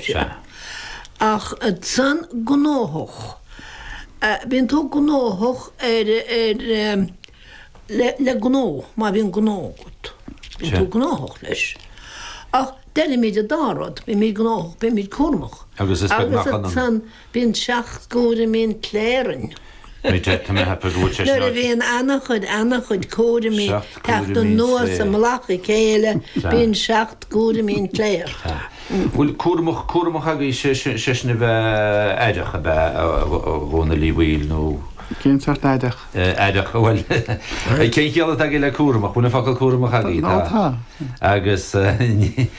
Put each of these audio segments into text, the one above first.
Sea. Ach ansan gnóthach. Bíonn tú gnóthach ar, ar, le, le gnó, má bhíonn gnó agat. Bíonn tú gnóthach leis. Ach deirimid an dá rud, bímid gnóthach, bímid cúramach. Agus is beag nach ionann. Bíonn seacht gcúraimí an tsléibhe orainn. Nuair a bhíonn ana-chuid, ana-chuid cúraimí ag teacht anuas i mullach a chéile, bíonn seacht gcúraimí an tsléibhe air. Bhfuil cúramach, cúramach agaibh, sé sin, sé sin a bheith aireach, ab ea, a Dhónaill Uí Bhaoill, nó? Cén sórt aireach? Aireach, bhuel, cén chiall atá agaibh le cúramach? Bhfuil an focal cúramach agaibh? Tá, tá. Agus ní.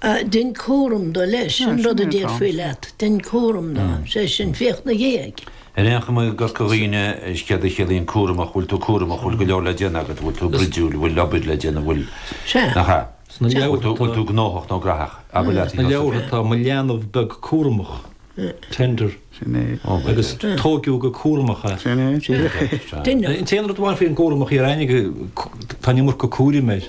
Dein cúram do, leis, an rud a déarfaí leat, dein cúram do, sé sin, féach 'na dhiaidh. Ar aon chuma, i gCorca Dhuibhne, is céard a chiallaíonn cúramach, go bhfuil tú cúramach, go bhfuil go leor le déanamh agat, go bhfuil tú bruidiúil, go bhfuil obair le déanamh, go bhfuil, nach ea? go bhfuil tú gnóthach nó graitheach. Abair leat, Sna leabhartha tá, mo leanbh beag cúramach, tender, agus tógadh go cúramach é. Sin é, sin é. An t-aon rud amháin faoin gcúramach, déarfainn, tá an iomarca cúraim air.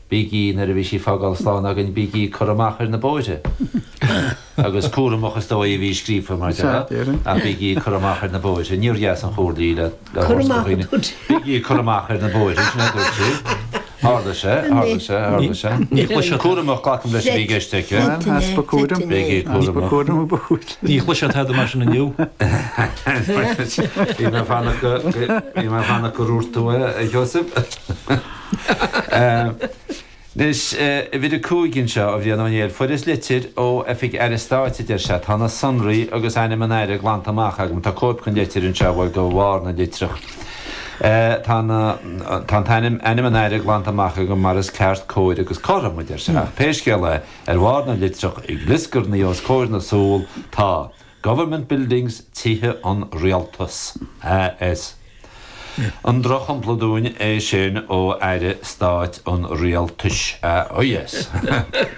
Bígí, nuair a bhí sí ag fágáil slán againn, bígí ag cur amach ar na bóithre. Agus cúramach is dóigh a bhí scríofa, mar dhea, ach bígí ag cur amach ar na bóithre. Níor dheas an chomhairle í le thabhairt do dhaoine. Bígí ag cur amach ar na bóithre, sin é a dúirt sí. Tharla sé, tharla sé, tharla sé. Ní chloisfidh siad. Cúramach, glacaim leis a bhí i gceist aici. Bhuel, easpa cúraim. Bígí ag cur amach. Easpa cúraim a ba chúis leis. Ní chloisfidh siad tada mar sin inniu. Bhí mé ag fanacht go raibh tú, a Sheosaimh. Anois, uimhir a 5 anseo, ó Bhrian Ó Néill, fuaireas litir ó Oifig Aire Stáit, a deir sé. Tá na sonraí agus ainm an Aire glanta amach agam. Tá cóip den litir anseo, bhuel, de bharr na litreach. Tá na, tá an t-ainm, ainm an Aire glanta amach agam mar is ceart, cóir agus cothrom, a deir sé. Ach pé scéal é, ar bharr na litreach, ag glioscarnaigh os comhair na súl, tá. Government Buildings Tithe an Rialtas, AS. An drochshampla dúinn é sin ó Aire Stáit an Rialtais? Oh yes.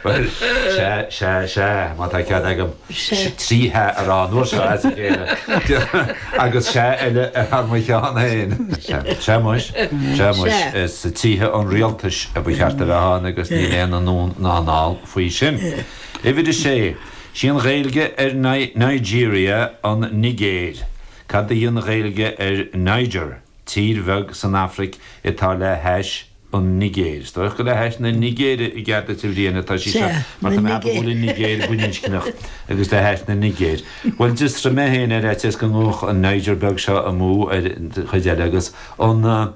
Bhuel, sea, sea, sea, má tá cead agam trí Sea a rá an uair seo as a chéile, agus Sea eile thar mo cheann féin. Sea muis, sea muis, is Tithe an Rialtais a ba cheart a bheith ann agus níl aon anonn ná anall faoi sin. Uimhir a Sé. 'Sí an Ghaeilge ar Nigeria an Nigéir. Cad í an Ghaeilge ar Niger, tír bheag san Afraic atá le hais an Nigéir? Is dóigh gur le hais na Nigéire, i gcead duit a Bhriain, atá sí seo, mar tá mé ag go bhfuil an Nigéir baininscneach agus le hais na Nigéire. Bhuel, d'fhiosraigh mé féin ar fhaitíos go ngabhfadh an Niger beag seo amú ar an chuid eile agus an.